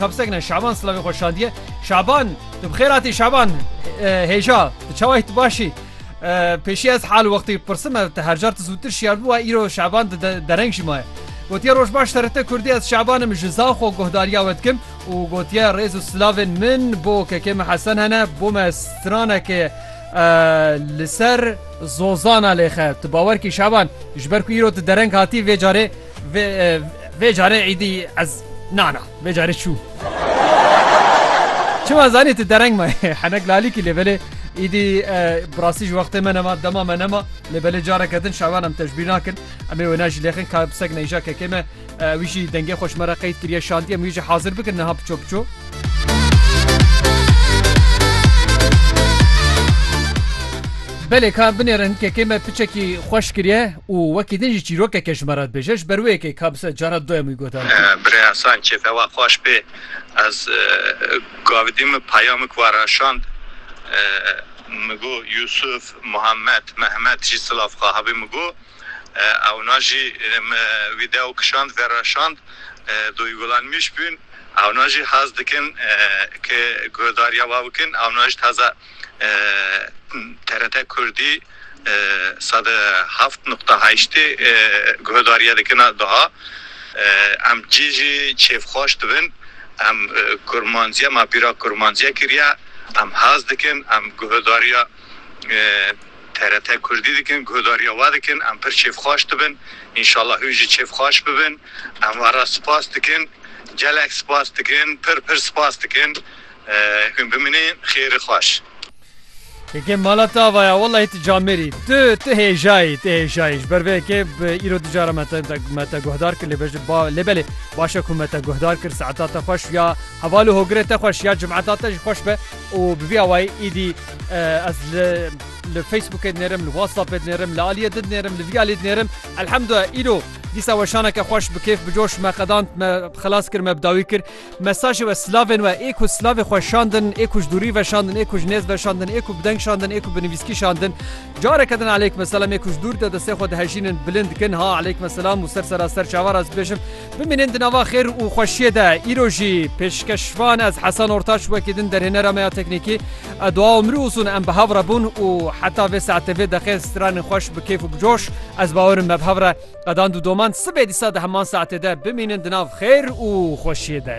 Tapsek ne Şaban silavê xwe şandiye. Şaban tu bi xêr hatî Şaban hêja tu çawa yî tu baş î? Pêşî ez hal wextî pirsim ev te hercar tu zûtir şiyar bûwa îro Şaban di dereng jî maye. Gotiye roj baş TRT Kurdî ez Şaban im ji zan xwe guhdariya we dikim û gotiye rêz û silavên min bo kekê min Hesen hene bo me stranekê li ser zozana lêxe tu bawer kî Şaban ji ber ku îro tu dereng hatî vê carê Vê vê carê îdî ez na na vê carê çû. Çima zanî tu dereng ma henek lalîkî lê belê îdî birasî ji wextê me nema dema me nema lê belê careke din şavan em tecbîr nakin em ê wê najî lêxin ka pisek neyja kekê me wî jî dengê xweş me re qeyd kiriye şandî em wî jî hazir bikin niha piço piço. Belê ka binêre hinkekê me piçekî xweş kiriye û wekî din jî çîrokeke ji me re dibêje ji ber wê yekê ka bi ser cara du em wî got a. Birê Esan kêfê we xweş bê. Ez gavidî min peyamik we re şand min got Yûsûf, Muhammed, Mehmet jî silav xwe hebî min got. Ewna jî me video kişand vereşand duygulanmış bûn ewna jî haz dikin ke guhdarîya wa bikin ewna jî taze TRT Kurdî sed û heft nuqta heştê guhdarîya dikina daha em cî jî kêfxweş dibin em kurmancîya ma bîra kurmancîya kirîya em haz dikin em guhdarîya. TRT Kurdî dikin, guhdarîya we dikin, em pir kêfxweş dibin, înşallah hûn jî kêfxweş bibin. Em we re spas dikin, gelek spas dikin, pir pir spas dikin. Hûn bimînin xêrî xweş. Keke mala te ava ya wellahî tu camêr î. Tu tu hêjayî, tu hêjayî. Ji ber vê yekê bi îro du cara me te me te guhdar kir lê be ji ba lê belê baş e ku me te guhdar kir. Saeta te xweş ya heval û hogirê te xweş ya cimeta te jî xweş be û bi vî awayî îdî Ez li li Facebookê dinêrim, li WhatsAppê dinêrim, li aliyê din dinêrim, li vî aliyê dinêrim. Elhemdulillah îro dîsa weşaneke xweş bi kêf bi coş me qedand me xilas kir me bi dawî kir. Mesajê we silavên we ê ku silavê xwe şandin, ê ku ji dûrî veşandin, ê ku ji nêz veşandin, ê ku bi deng şandin, ê ku bi nivîskî şandin. Careke din eleykum selam ê ku ji dûr de destê xwe dihejînin bilind dikin ha eleykum selam û ser sera ser çavar ez bibêjim. Bimînin di nava xêr û xweşiyê de. Îro jî pêşkeşvan ez Hesen Ortaç wekî din derhênera me ya teknîkî. Dua û mirî ûzûn em bi hev re bûn û heta vê saetê vê deqê stranên xweş bi kêf û bi coş. Ez bawer im me bi hev re qedand û domand sibê dîsa di heman saetê de. Bimînin di nav xêr û xweşiyê de.